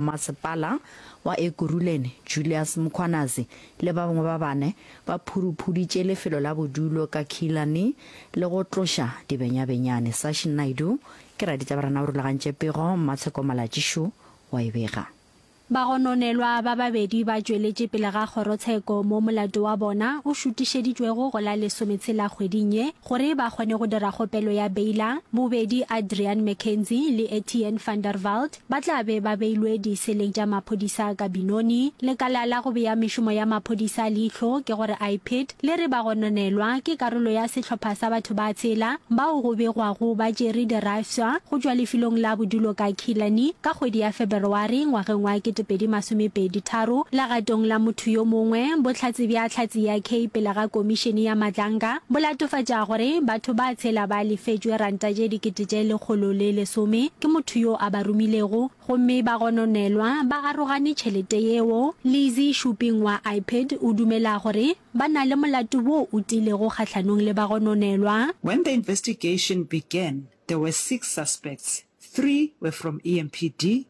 Masepala wa Ekurhuleni, Julius Mkhwanazi, le ba bangwe ba bane ba phuruphuditše lefelo la bodulo ka khila ni le go tloša dibenyabenyane. Sashi Naidoo ke raditabarana o rulagantše pego, Mmatsheko Malatjishu wa e bega. Bagononelwa ba babedi ba tšweletše pele ga kgorotsheko mo molato wa bona o šutišeditšwego go la lesometshela kgweding ye gore ba kgone go dira kgopelo ya beila. Bobedi Adriaan McKenzie le Etienne van der Walt ba tla be ba beilwe diseleng tša maphodisa ka Binoni. Lekala la go bea mešomo ya maphodisa leihlo ke go re IPID le re ba gononelwa ke karolo ya sehlopha sa batho ba tshela bao go begwago ba tšere dirafsa go tšwa lefelong la bodulo ka Killarney ka kgwedi ya Feberwari ngwageng wa 2023 legatong la motho yo mongwe bohlatse bja hlatse ya Kay pele ga komišene ya matlanga Bo latofatša gore batho ba tshela ba lefetšwe ranta tše dikete tše lekgolo le lesome ke motho yo a ba romilego gomme ba gononelwa ba arogane tšhelete yeo. Lizzie Shuping wa IPID o dumela gore ba na le molato wo o tiilego kgahlanong le bagononelwa. When the investigation began, there were six suspects, three were from EMPD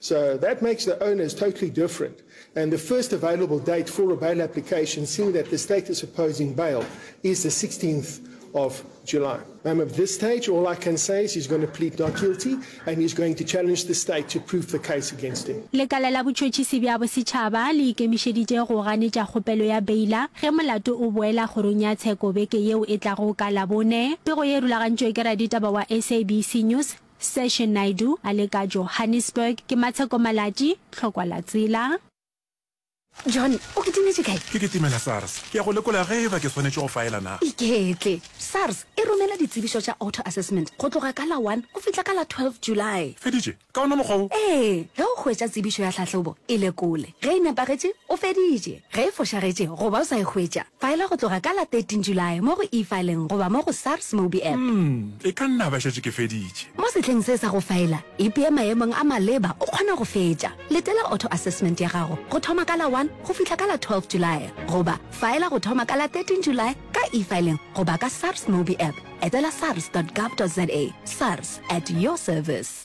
So that makes the owners totally different. And the first available date for a bail application, seeing that the state is opposing bail, is the 16th of July. I'm at this stage, all I can say is he's going to plead not guilty and he's going to challenge the state to prove the case against him. Lekala la botšhotšhisi bja bosetšhaba le ikemišeditše go ganetša kgopelo ya beila ge molato o boela kgorong ya tsheko beke yeo e tlago ka Labone. Pego ye e rulagantšwe ke raditaba wa SABC News, Seshe Naidoo a le ka Johannesburg, ke Matsheko Malatji, Tlhokwalatsela. John, o kitimetše kae? Ke kitimela SARS. Ke ya go lekola ge eba ke swanetše go faela na. Iketle. SARS e romela ditsebišo tša auto assessment go tloga ka la one go fihla ka la twelve July. Feditše? Ka ona mokgwa wo? Ee, ge o hwetša tsebišo ya tlhahlobo, e lekole. Ge e nepagetše, o feditše. Ge e fošagetše goba o sa e hwetša, faela go tloga ka la 13 Julae mo go E-Filing goba mo go SARS Mobi App. Umm, e ka nna ba šetše ke feditše. Mo sehleng se sa go faela, ipee maemong a maleba o kgona go fetša. Letela auto-assessment ya gago go thoma ka la 1 go fihla ka la 12 Julae goba faela go thoma ka la 13 Julae ka E-Filing goba ka SARS Mobi App. Etela sars dot gov dot za. SARS, at your service.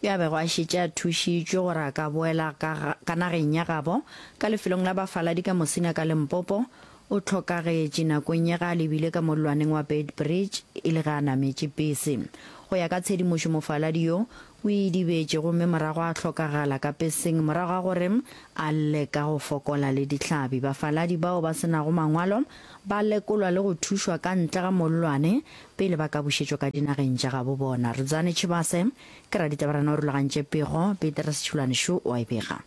Ge a bego a šetše a thušitšwe gore a ka boela ka, ka nageng ya gabo, ka lefelong la bafaladi ka Musina ka Limpopo, o hlokagetše nakong ye ge a lebile ka mollwaneng wa Beitbridge e le ge a nametše pese. Go ya ka tshedimošo mofaladi yo, o idibetše gomme morago a hlokagala ka peseng morago ga gore a lle ka go fokola le dihlabi. Bafaladi bao ba se nago mangwalo ba lekolwa le go thušwa ka ntle ga mollwane pele ba ka bušetšwa ka dinageng tša gabo bona. Rdzani Chibase. Ke raditabarana o rulagantše pego, Peter Sethulane šo o a e bega.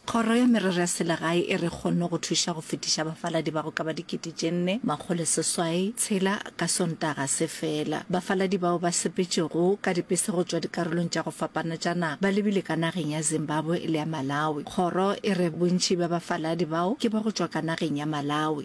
Kgoro ya Merero ya Selegae e re kgonne go thuša go fetiša bafaladi ba go ka ba dikete tše nne, makgolo seswai, tshela ka Sontaga se fela. Bafaladi bao ba sepetšego ka dipese go tšwa dikarolong tša go fapana tša naga ba lebile ka nageng ya Zimbabwe le ya Malawi. Kgoro e re bontši bja bafaladi bao ke ba go tšwa ka nageng ya Malawi.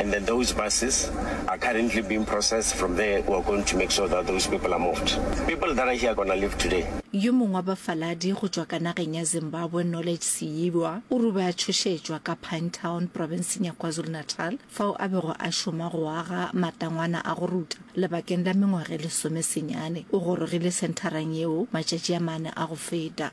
and then those buses are currently being processed from there we are going to make sure that those people are moved people that are here are gonna leave today Yo mongwe wa bafaladi go tšwa ka nageng ya Zimbabwe Knowledge Siyibwa o rube a tšhošetšwa ka Pinetown profenseng ya KwaZulu-Natal fao a bego a šoma go aga matangwana a go ruta lebakeng la mengwaga e lesomesenyane. O gorogile sentharang yeo matšatši a mane a go feta.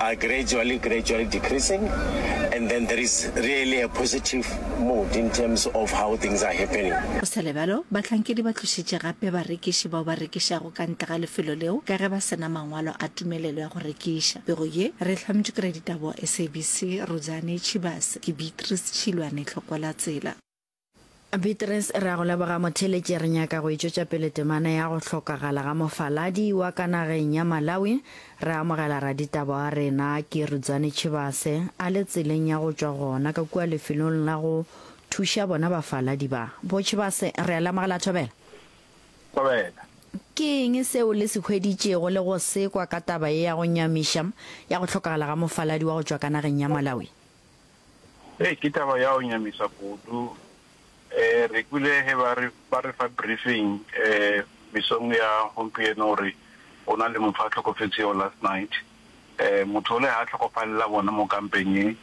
are gradually gradually decreasing and then there is really a positive mood in terms of how things are happening. Go sa le bjalo, bahlankedi ba tlošitše gape barekiši bao ba rekišago ka ntle ga lefelo leo ka ge ba se na mangwalo a tumelelo ya go rekiša. Pego ye re e hlametšwe ke raditaba wa SABC, Rudzani Tshibase. Ke Beatrice Tšhilwane Tlhokola-Tsela. Beatrice, Re a go leboga motheeletši. Re nyaka go e tšwetša pele temana ya go hlokagala ga mofaladi wa ka nageng ya Malawi. Re amogela raditaba wa rena Kirudzani Chivase a le tseleng ya go tšwa gona ka kua lefelong la go thuša bona bafaladi ba. Bo Chivase, re a le amogela Thobela. Thobela. Ke eng seo le se hweditšego le go se kwa ka taba ye ya go nyamiša ya go hlokagala ga mofaladi wa go tšwa ka nageng ya Malawi? Hei, ke taba ya go nyamisa kudu. Re kwile ge ba re, ba re fa briefing mesong ya gompieno gore go na le motho a hlokofetšego last night. Motho ole ga a hlokofalela gona mo kampeng ye.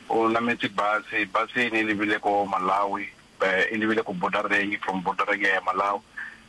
O nametše bus, bus ye e ne e lebile ko Malawi, e lebile ko border-reng, from border-reng ya ya Malawi.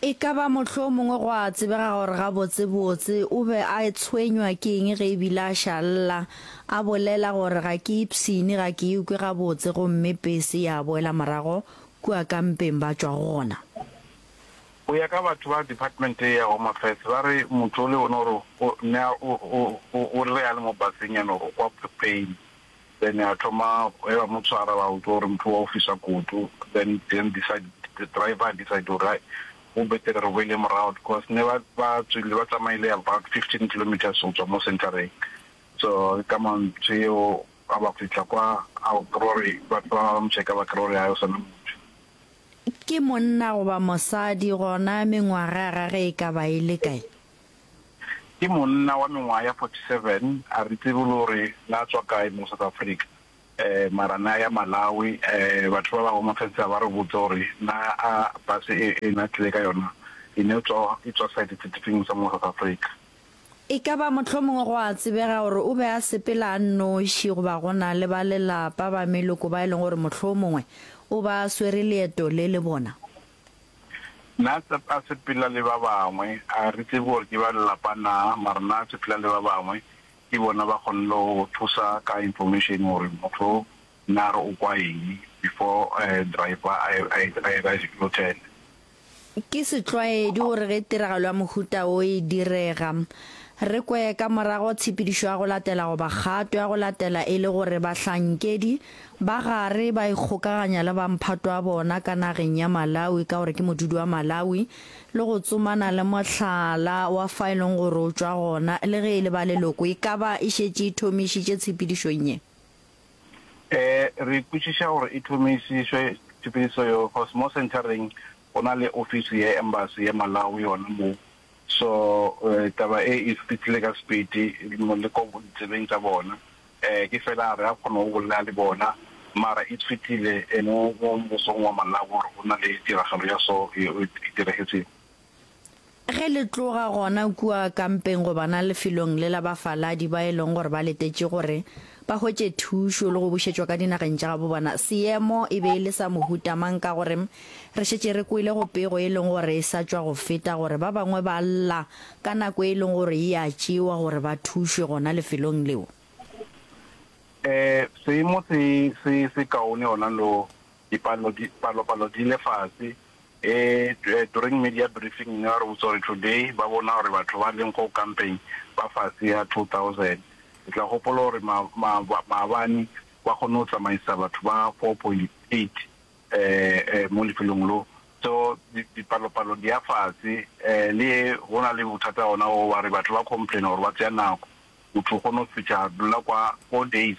E ka ba mohlomongwe gwa tsebega gore gabotsebotse o be a tshwenywa ke eng ge e bile a ša lla, a bolela gore, Ga ke ipshine, ga ke ikwe gabotse, gomme pese ya boela morago kua ka mpeng ba tšwa go gona. Go ya ka batho ba Department ya Home Affairs, ba re motho o le one o re o ne a o, o, o, o re ge a le mo baseng ya no re o kwa pain. then a thoma ge ba mo tshwara ba utlwa gore motho wa o fisa koto then then decide the driver decide gore hai go betere re boele morago because ne ba ba tswile ba tsamaile about 15 kilometers go tswa mo centereng so ka mantso eo a ba fitla kwa a gore ba ba mo checka ba gore ha o sana motho ke monna goba mosadi gona mengwaga ga ge e ka ba ile kae Ke monna wa mengwaga ya 47, a re tsebe le gore na tswa kae mo South Africa mara na ya Malawi. Batho ba ba go mafentsha ba re botse gore na a bus e e na tlile ka yona e ne tswa e tswa side se difeng sa mo South Africa. E ka ba mohlomongwe go a tsebega gore o be a sepela a nnoši goba go na le ba lelapa ba meloko ba e leng gore mohlomongwe o ba swere leeto le le bona. Na a sepela le ba bangwe? A re tsebe gore ke ba lelapa na, mara na a sepela le ba bangwe? Ke bona ba kgonne go go thusa ka information gore motho o na re o kwa eng before driver a dira U-turn. Ke setlwaedi gore ge tiragalo ya mohuta wo e direga, re kwe ka morago tshepedišo ya go latela goba kgato ya go latela e le gore bahlankedi Ba gare ba ikgokaganya le ba mphatwa bona ka nageng ya Malawi ka gore ke modudi wa Malawi le go tsomana le mohlala wa fa e leng gore o tšwa gona le ge e le ba leloko e ka ba e šetše e thomišitše tshepedišong ye. Ee, re kwešiša gore e thomišitšwe tshepedišo yeo cos mo Centereng go na le ofisi ya Embassy ya Malawi yona moo So taba e e fihlile ka sepiti moleko ditsebeng tša bona. Ke fela a re a kgone go bolela le bona mara e fihlile mo mosong wa Malawi gore go na le tiragalo ya so e diregetseng. Ge le tloga gona kua kampeng go bona lefelong le la bafaladi ba e leng gore ba letetše gore ba hwetše thušo le go bušetšwa ka dinageng tša gabo bona, seemo e be e le sa mohuta mang ka gore Re šetše re kwele go pego e leng gore e sa tšwa go feta gore ba bangwe ba lla ka nako e leng gore e a tšewa gore ba thušwe gona lefelong leo. Ee, seemo se se se kaone gona lo. Dipalo di, palopalo di ile fase. Ee, during media briefing ne ba re botsa gore today ba bona gore batho ba leng go kampeng ba fase ga 2000. Le tla gopola gore ma, ma, maabane ba kgonne go tsamaisa batho ba 4.8 mo lefelong lo. So dipalopalo di ya fase, le go na le bothata gona o wa re batho ba complain gore ba tseya nako, motho o kgona go fetša dula kwa four days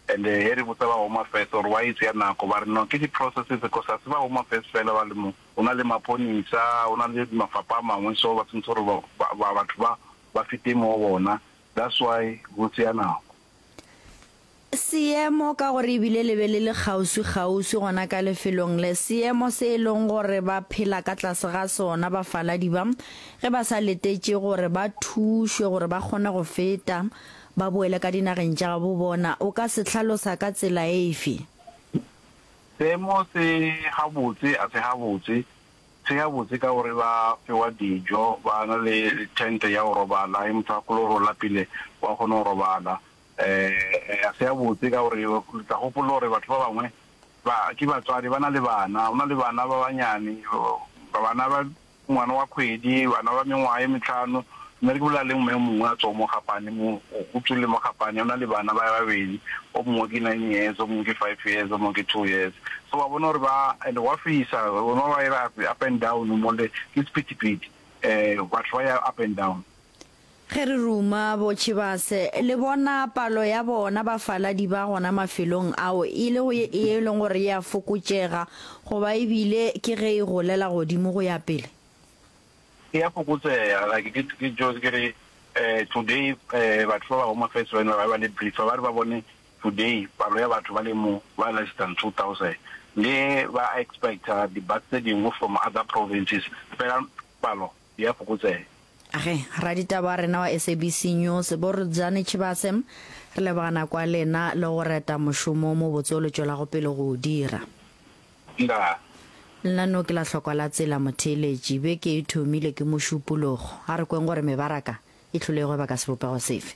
and he re botsa ba Home Affairs gore why e tseya nako ba re no ke di processes because ga se ba Home Affairs fela ba le mo, go na le maponisa, go na le mafapha a mangwe so ba tshwanetse gore batho ba ba fete mo go bona that's why go tseya nako. Seemo, ka gore e bile le be le le kgauswikgauswi gona ka lefelong le, seemo se e lego gore ba phela ka tlase ga sona bafaladi ba, ge ba sa letetše gore ba thušwe gore ba kgone go feta ba boele ka dinageng tša gabo bona, o ka se hlalosa ka tsela efe? Seemo se gabotse, a se gabotse? Se gabotse ka gore ba fewa dijo, ba na le thente ya go robala, ge motho a kologe go lapile o a kgona go robala. Ga se gabotse ka gore re tla gopola gore batho ba bangwe ba ke batswadi, ba na le bana. Go na le bana ba bannyane, bana ba ngwana wa kgwedi, bana ba mengwaga e metlhano. Mme re ke bolela le mme o mongwe a tswang mo Gapane mo, o tswile mo Gapane. O na le bana ba babedi, o mongwe ke nine years, o mongwe ke five years, o mongwe ke two years. So wa bona gore ba, and gwa fisa, ba ba ira up and down mo le, ke sephethephethe. Batho ba ya up and down. Ge re ruma bo Chivase, le bona palo ya bona bafaladi ba gona mafelong ao e le go ye e leng gore e a fokotšega goba e bile ke ge e golela godimo go ya pele? E a fokotsega. Like ke, ke just ke re today batho ba ba Home Affairs ba ile ba be ba le briefer ba re ba bone today palo ya batho ba le mo ba less than 2000 le ba expecter di-bus tse dingwe from other provinces fela palo e a fokotsega. Ge, raditaba wa rena wa SABC News, bo Rdzani Chibase, re leboga nako ya lena le go reta mošomo o mobotse o le tšwelago pele go o dira. Ndaa. Lenaneo ke la hlokwa la tsela motheeletši. Beke e thomile ke mošupologo. A re kweng gore mebaraka e hlolego e baka sebopego sefe?